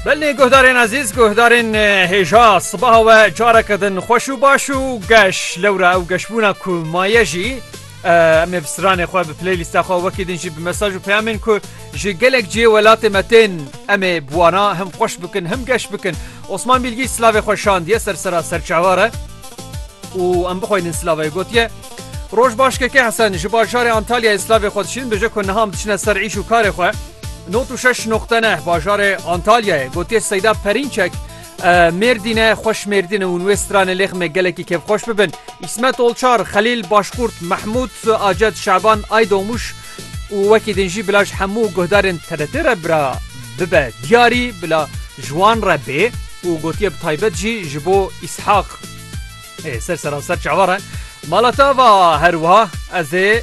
Belê guhdarên ezîz guhdarên hêja sibaha we careke din xweş û baş û geş lewra ew geşbûna ku maye jî em ê bi stranê xwe bi playlîsta xwe wekî din jî bi mesaj û peyamên ku ji gelek cihê welatê me tên em ê bi wana him xweş bikin him geş bikin Osman Bilgî silavê xwe şandiye ser sera serçavare û em bixweynin silavê gotiye Roj başkeke hesen ji bajarê Antalyayê silavê xwe dişîn bije ku niha em diçine ser îş û karê xwe Nod û şeş noqte neh bajarê Antalyayê gotiye Seyda Perînçek Mêrdîne xweş Mêrdîne hûn wê stranê lêxmê gelekî kêfxweş bibin. Îsmet Olçar, Xelîl Başkurt, Mehmûd Aced, Şaban Aydomuş û wekî din jî bila ji hemû guhdarên TRT re bira bibe diyarî bila ji wan re bê û gotiye bi taybet jî ji bo Îshaq Ê ser seranser çawa re. Malatava her wiha ez ê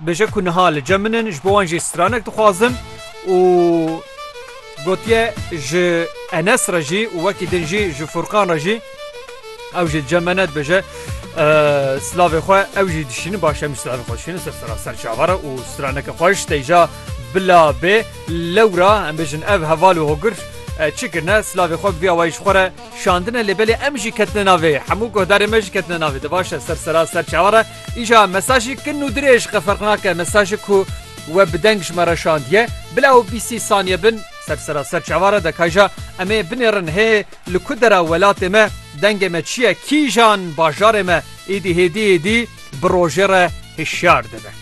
Bêje ku niha li cem min in, ji bo wan jî stranek dixwazim û gotiye ji Enes re jî û wekî din jî ji Furkan re jî ew jî li cem me ne dibêje silavê xwe ew jî dişînin baş em silavê xwe dişînin ser sera ser çava re û straneke xweş têja bila bê lewra em bêjin ev heval û hogir çi kirine silavê xwe vî awayî ji xwe re şandine lê belê em jî ketine navê hemû guhdarê me jî ketine navê divaşe ser sera ser çava re Îja mesajê kin û dirêj qe ferq nake, mesajê ku we bi deng ji me re şandiye, bila ew bîst sî saniye bin ser sera ser çava re dika îja em ê binêrin hê li ku dera welatê me dengê me çi ye, kîjan bajarê me êdî hêdî êdî bi rojê re hişyar dibe.